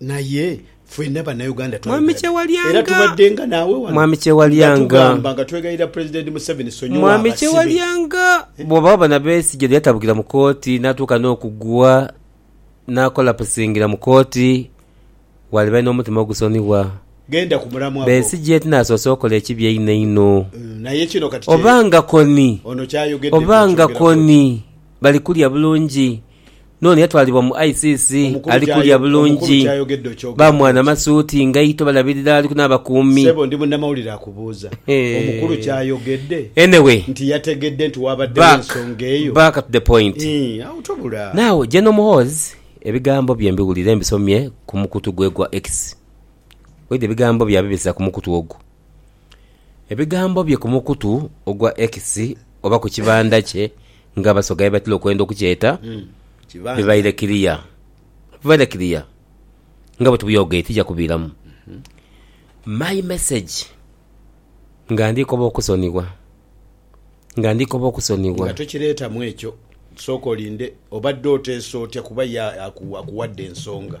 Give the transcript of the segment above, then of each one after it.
Naye fwena banauganda twayogera bino era tubaddenga naawe wano nga tugamba nga twegayirira president Museveni sonyiwa abasibe. Bwobaawo bona Besigye lweyatabukira mu kooti natuuka n'okugwa nakolapusingira mu kooti walibaire n'omutima ogusonibwa Besigye tinasoose okola ekibi einho einho oba nga Kony oba nga Kony balikulya bulungi. N'ono yatwalibwa mu ICC ali kulya bulungi. Ba mwana masuuti ngaito balabirira aliku n'abakuumi. Anyway back back to the point. Now General Muhoozi ebigambo bye mbiwulira mbisomye ku mukutu gwe gwa X. Waidha ebigambo bye abibisa ku mukutu ogwo. Ebigambo bye ku mukutu ogwa X oba ku kibanda kye nga Abasoga ye batera okwenda okukyeta bibaire kiliya. Bibaire kiliya nga bwe tubyogeire tija kubiiramu. My message nga ndi koba okusonibwa nga ndi koba okusonibwa. Nga tokireetamu ekyo sooka olinde obadde oteesa otya kuba ye akuwadde ensonga.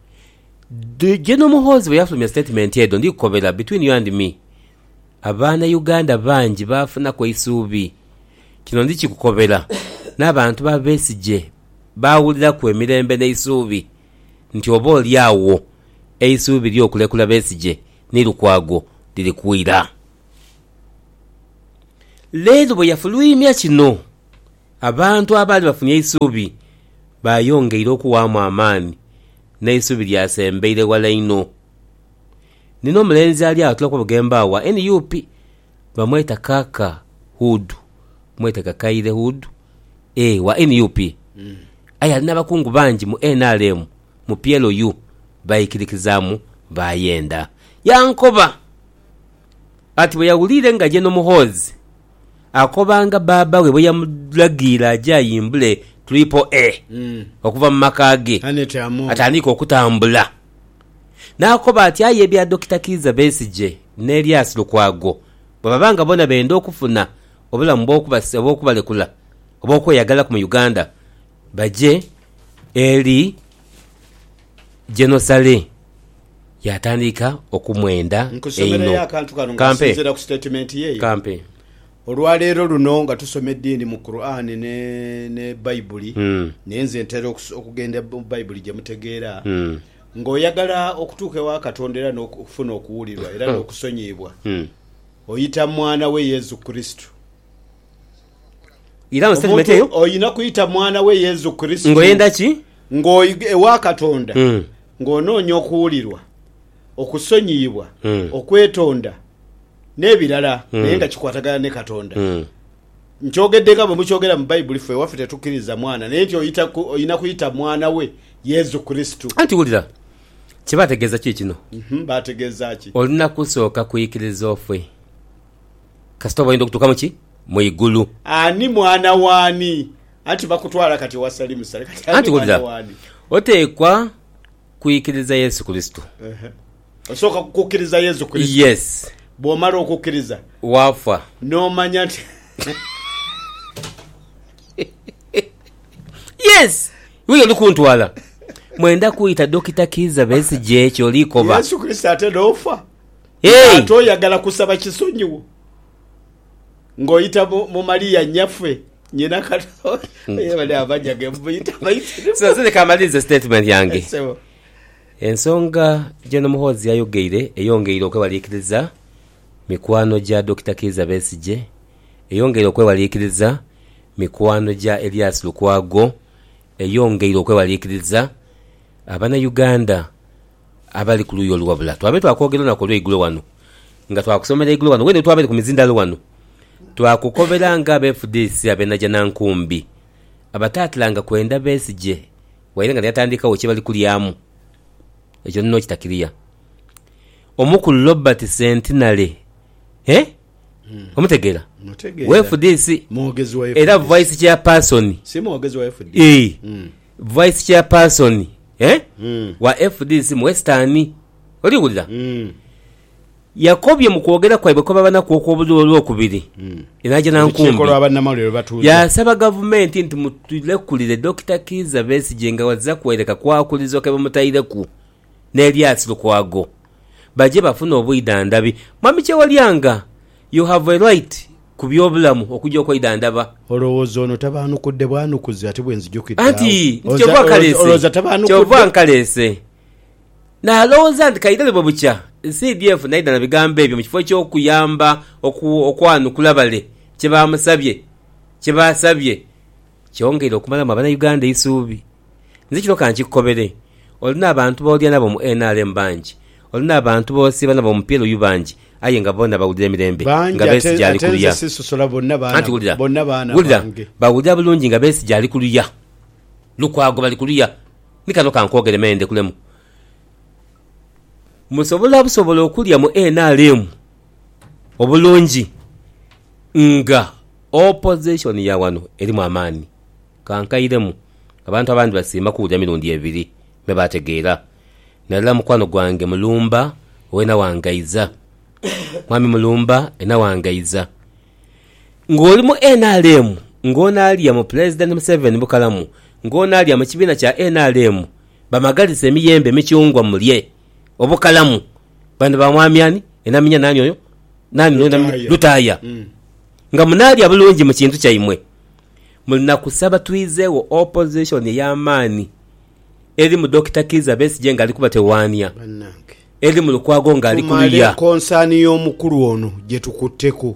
Gen Muhoozi bweyafulumya sitatimenti edho, ndhikukobera, between you and me, a baana Uganda bangi baafunaku eisuubi. Kino ndhikikukobera, n'abantu ba Besigye baawuliraku emirembe n'eisuubi nti oba oli agho eisuubi ly'okulekula Besigye ni Lukwago liri kwira. Leero bweyafuluimya kino. Abantu abaali bafunye eisuubi baayongeire okuwaamu amaani, n'eisuubi lyasembeire ghala inho. Ni n'omulenzi ali agho atula kubughembo agho gha nup bamweta Kaka Hood, mwete Kakaire Hood, ee wa nup, aye ali n'abakungu bangi mu nrm, mu PLU, baikirikizaamu baayenda. Yankoba. Ati bwe yawulire nga ye n'omuhoozi akobanga bbaabba we bwe yamulagiire aje ayimbule Triple A okuva mu maka ge atandiike okutambula n'akoba ati aye ebya Dokita Kiiza Besigye ni Elias Lukwago bwe baba nga bona benda okufuna obulamu obw'okubalekula obw'okweyagalaku mu Uganda baje eri Genosale yaatandika okumwenda Nkusomerayo einho. akantu kano nga Kampe. nsinziira ku sitatimenti ye eyo. Kampe. Olwaleero luno nga tusoma ediini mu Kuraani ne ne Baibuli, Mm. naye nze ntera okus- okugenda mu Baibuli gye mutegeera, Mm. ng'oyagala okutuuka ewa Katonda era n'oku- okufuna okuwulirwa era n'okusonyiyibwa, Mm. oyita mu Mwana we Yesu Kristo. Iramu statement Omuntu eyo oyina kwita mwana we Yesu Kristo ngoyenda ki? ng'oiga ewa Katonda Mm. ng'onoonya okuwulirwa, okusonyiyibwa, Mm. okwetonda n'ebirala naye nga kikwatagana ni Katonda. Mm. Nkyogedde nga bwe mukyogera mu Baibuli ffe ewaffe tetukkiriza mwana naye nti oyita ku- oyina kuyita mwana we Yesu Kristo. Anti wulira, kye baategeeza kiikino, Mhm, Baategeeza ki? olina kusooka kwikiriza ofe. Kasita oba oyenda okutuuka mu ki? Mu igulu. Ani mwana w'ani? Anti bakutwala kati ewa Salimu sale. Kati ani mwana w'ani? Oteekwa kwikiriza Yesu Kurisito. Osooka kukukiriza Yesu Kurisito. Yes. Bw'omala okukiriza. Waafa. N'omanya nti. Yes! Iwe y'oli kuntwala. Mwenda kwita Dokita Kiiza Besigye ky'oli koba. Yesu Kurisito ate n'ofa. nga ate oyagala kusaba kisonyiwo nga oita mu Maria nyaffe nyina Katonda. Aye bali amanya ge mubuyita abaisiramu. Nze leka malirize statement yange. Ensonga Gen Muhoozi yayogeire eyongeire okwewaliikiriza mikwano gya Dokita Kiiza Besigye, eyongeire okwewaliikiriza mikwano gya Elias Lukwago, eyongeire okwewaliikiriza abana Uganda Abali ku luuyi olu wabula twabaire twakwogera olunaku olweigulo wano nga twakusomera eigulo wano wene wetwabaire ku mizindalo wano twakukobera nga abefudisi abenaja na nkumbi abatatilanga kwenda Besigye waire nga neyatandikagho kyebali kulyamu ekyo ndina okitakiria Omukulu Robert Centenary eeh omutegera? Mutegeera. Wefudisi Mwogezi wa era FDC. Vice Chairperson Si mwogezi wa FDC. eeh. Mm. Vice Chairperson wa fdc mu Western oli wulira yakobye mu kwogera kwaibwe kwe babanaku okw'obuliro Olwokubiri e Najjanankumbi yaasaba Gavumenti nti mutulekulire Dokita Kiiza Besigye nga azira kwereka kwakulizo ke bamutaireku. n'Elias Lukwago baje bafune obwidhandhabi. Mwami Kyewalyanga, you have a right ku by'obulamu okuja okwedhandhaba. Olowooza ono tabaanukudde bwanukuzi ate bwe nzija okidda agho? Anti nti kyova nkaleese. Olowooza tabaanukudde? Kyova nkaleese. Nalowooza nti kaidhali bwe bukya CDF n'aidha na bigambo ebyo mu kifo eky'okuyamba okwanukula bale kye baamusabye, kye baasabye. Kyongeire okumalamu abanauganda eisuubi. Nze kino ka nkikukobere, olina abantu b'olya nabo mu nrm bangi, olina abantu b'osiiba nabo mu PLU bangi aye nga boona bawulira emirembe nga Besigye ali ku luya. Anti wulira, wulira, bawulira bulungi nga Besigye ali ku luya. Lukwago bali ku luya. Ni kano ka nkwogere me ndekulemu. Musobola busobola okulya mu nrm obulungi nga Opozisoni ya wano erimu amaani. Ka nkairemu, abantu abandi basiima kuwulira mirundi ebiri me baategeera. Nairala mukwano gwange Mulumba owe Nawangaidha. Mwami Mulumba e Nawangaidha, ng'oli mu nrm, ng'onaalya mu Pulezidenti Museveni bukalamu, ng'onaalya mu kibiina kya nrm, bamagalise emiyembe emikyungwa mulye. obukalamu bandiba mwami ani enaminya nani oyo nani Lutaaya. Lutaaya Mm. nga munaalya bulungi mu kintu kyaimwe muli na kusaba twizegho opposition ey'amaani eri mu Dokita Kiiza Besigye ng'ali kubatewaania, Bannange. eri mu Lukwago ng'ali ku luya. Tumale konsani y'omukulu ono gye tukutteko